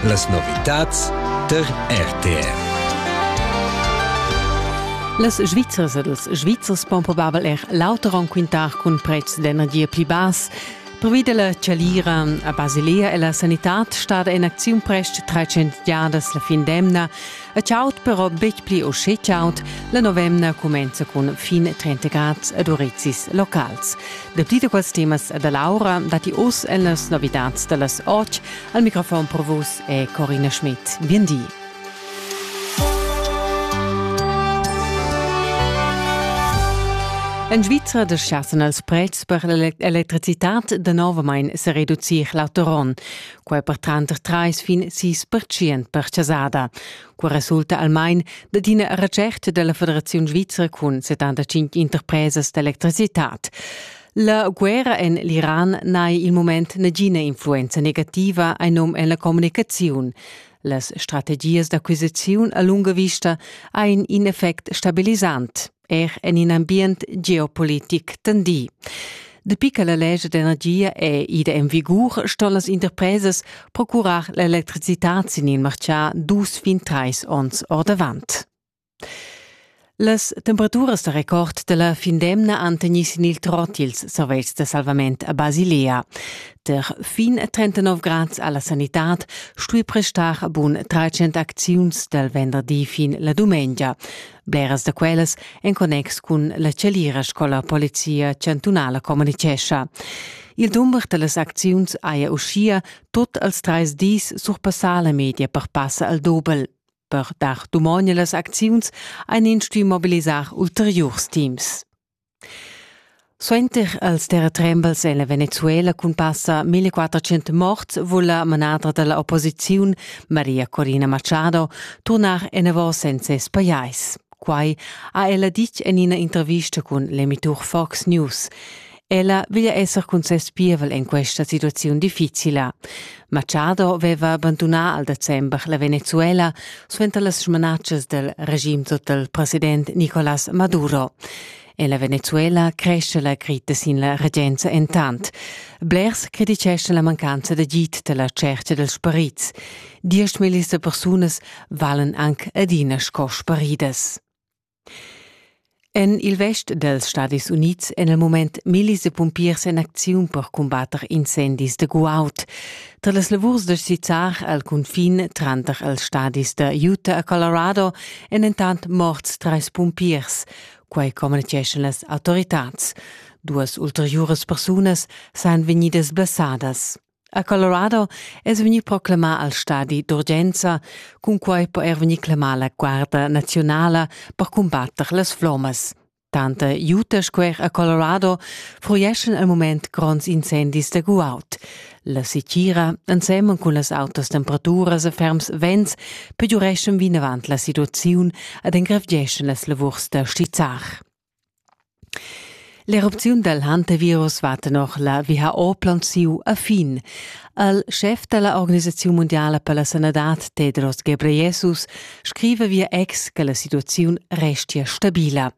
Las novitads tar RTR. Las Svizzers ed ils Svizzers pon probabel er l'auter quintar cun pretschs d'energia pli bass. Pervi della chalira a Basilea è la sanitad stada in acziun prest 300 giadas la fin d'emna. E ciaut però betg pli o sche ciaut, la novemna cumenza cun fin 30 grad ed urizis locals. Dapli da quels temas da Laura datti oz en las novidats da las 8. Al microfon per vus è Corina Schmidt. Bien di. En Svizra deschiassen els prezs per l'electricitat danovamain se reducir l'autoron. quai per tranter trais fin sis percient per chasada. Qua resulta almain dad ina recert della Federaziun Svizra cun 75 interpresas d'electricitad. La guerra en l'Iran n'hai il moment nagina influenza negativa ein num en la communicaziun. Las strategias d'acquisiziun a lunga vista ein in effect stabilisant. er en in ambient geopolitic tendì. Dapi che la legge d'energia è ida en vigur, ston las interpresas procurar l'electricitad sin il martgà dus fin trais onns ordavant. Las temperaturas da record della fin d'emna han tegnì sin il trot ils servetschs de salvament a Basilea. Der fin 39 grads alla sanitad stui prestar bun 300 acziuns del venderdi fin la dumengia. Bleras da quellas en connex cun la Celira scola polizia chantunala communicescha. Il dumber da las acziuns haja uschia tot als trais dis surpassà la media per passa al dobel. Per dar dumogn a las acziuns ein ins stuì mobilisar ulteriurs teams. Suenter els terratrembels è la Venezuela cun passa 1400 morts vul la manadra dalla opposiziun, Maria Corina Machado, turnar enavos en ses pajais. Quai ha ella ditg en ina intervista cun l'emitur Fox News. Ella veglia esser cun ses pievel en questa situaziun difficila. Machado veva abandunà al december la Venezuela suenter las smanatschas del regim sotto il president Nicolás Maduro. En la Venezuela cresce la crita sin la regenza entant. Blers criticeschan la mancanza d'agid della cerca dels parits. Diesch millis de persunas valen anc adina sco sparidas. En il vest dals Stadis Unids èn al mument millis da pumpiers en acziun per cumbatter incendis da guaud. Tar las lavurs da sizzar al cunfin tranter els stadis da Utah e Colorado èn entant morts trais pumpiers. Quai communitgeschan las autoritads. Duas ulteriuras persunas sajan vegnidas blessadas. A Colorado es vegni proclamà al stadi d'urgenza, cunquai po er vegnir clamà la Guarda naziunala per cumbatter las flommas. Tante jute squer a Colorado fruieschan al mument gronds incendis da guaud. La sitira, ensemen cun las autas temperaturas e ferms vents, pegiureschan vinavant la situaziun ed engrevgeschan las lavurs da stizzar. L'erupziun dal Hantavirus va tenor la WHO plaunsiu a fin. El schef da la organisaziun mundiala per la sanadad Tedros Ghebreyesus scriva via ex che la situaziun restia stabila.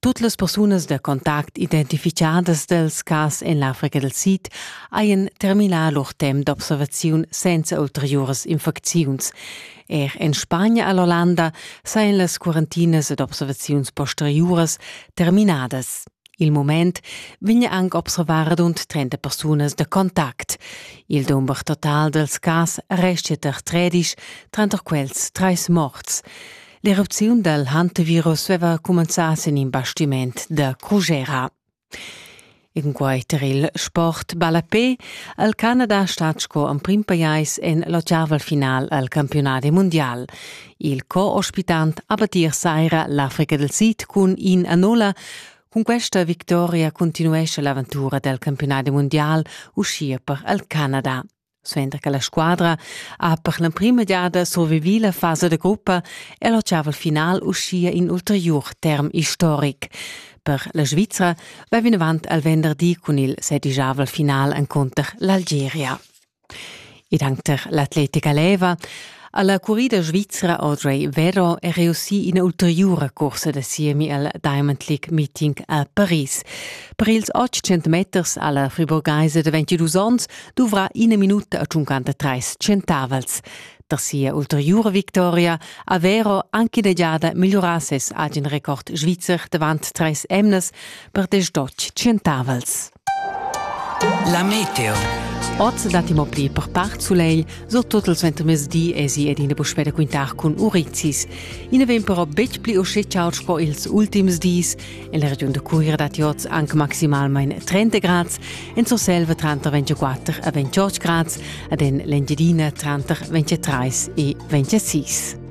Tut las persunas da contact identificadas dals cas en l'Africa dal Sid hajan terminà lur temp d'observaziun senza ulteriuras infecziuns. Er en Spagna e l'Ollanda sajan las quarantinas ed observaziuns posteriuras terminadas. Il moment vegn anc observar rund 30 persunas da contact. Il dumber total dals cas restia tar 13, tranter quels trais morts. L'erupziun dal hantevirus aveva cumenzà sin in bastiment da Crugera. E cunquai tar il sport ballapè ha il Canada stat sco emprim pajais en l'ottavel final al campiunadi mundial. Il co-ospitant ha battir saira l'Africa del Sid cun in a nolla. Cun questa victoria continuesce l'aventura del campiunadi mundial uschia per il Canada. Suenter che la squadra ha per l'emprima giada survivì la fasa da gruppa è l'otgavel final uschia in ulteriur term istoric. Per la Svizra va vinavant al venderdi cun il sedigiavel final encunter l'Algeria. Ed anche l'atletica leva Alla currida svizra Audrey Vero è reussì ina ulteriura cursa da siemi al Diamond League Meeting a Paris. Per ils 800 meters alla friburgheisa da 22 onns dovrà ina minuta a 53 centavels. Da sia ulteriura victoria ha Vero anche da giada migliorà ses agen record svizzer davant treis emnas per desch centavels. La meteo. Oz datti mo pli per part sulegl, surtut il suentermezdi esi ed ina puspè da quintar cun urizis. I na vegn però betg pli uschè chaud sco ils ultims dis. En la regiun da Cuira datti oz anche maximalmain 30 grads, en Surselva tranter 24 e 28 grads, ed en l'Engiadina tranter 23 e 26.